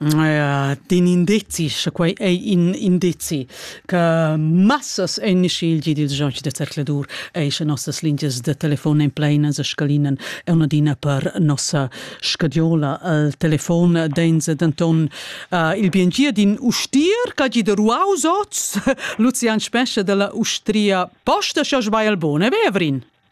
D'in indizi, sche quai è in indizi che massas en schilgi dils gens da zercladur e sche nossas lingias de telefon en pleinas e scalinen è un'adina per nossa scadiola. Il telefon densa denton uh, il biengia d'in ustier che gi de ruaus oz, Lucian Spescha della Ustria Posta, sche sbagl bone, Vevrin.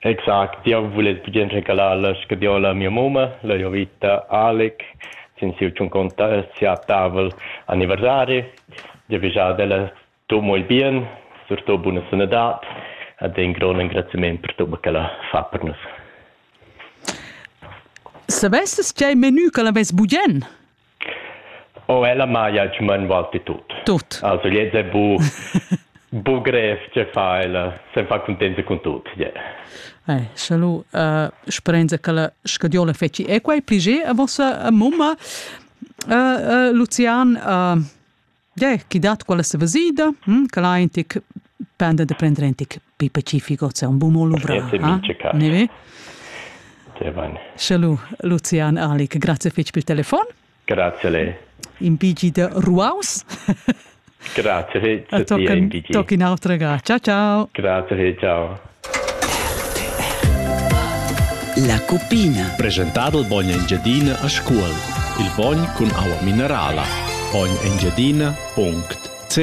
Exact, jau vuless bugen regalar la scadiola a mia mumma, la Jovita Aleck, sin siu tschunconta sia tavel anniversari. Giavischar ad ella tut mo il bien, surtut buna sanadad ed in grond engraziament per tut che ella fa per nus. Savesses tgei menu che l'avess bugen? Oh, ella maia il tschman valti tut. Tut. Also, jetzt è bu, bu grev che fa ella, se fa contenta con tut. Yeah. Eh, salut, uh, sperenza che la scadiola feci. E quai plige a vostra uh, mumma, uh, uh, Lucian, uh, Tgè chi dat quella savesida, hm, quel ha in tic penda da prender in tic pi pacifico, c'è un bun mo luvrà. Ne ve? Sche lu, Lucian Alic, grazie fitg per il telefon. Grazie a lei. Impigi da ruaus. Grazie, fitg. Tocca in autra ga. Ciao, ciao. Grazie, ciao. La cupina. Presentà dal bogn Engiadina a Scuol. Il bogn cun aua minerala. Bogn Engiadina.ch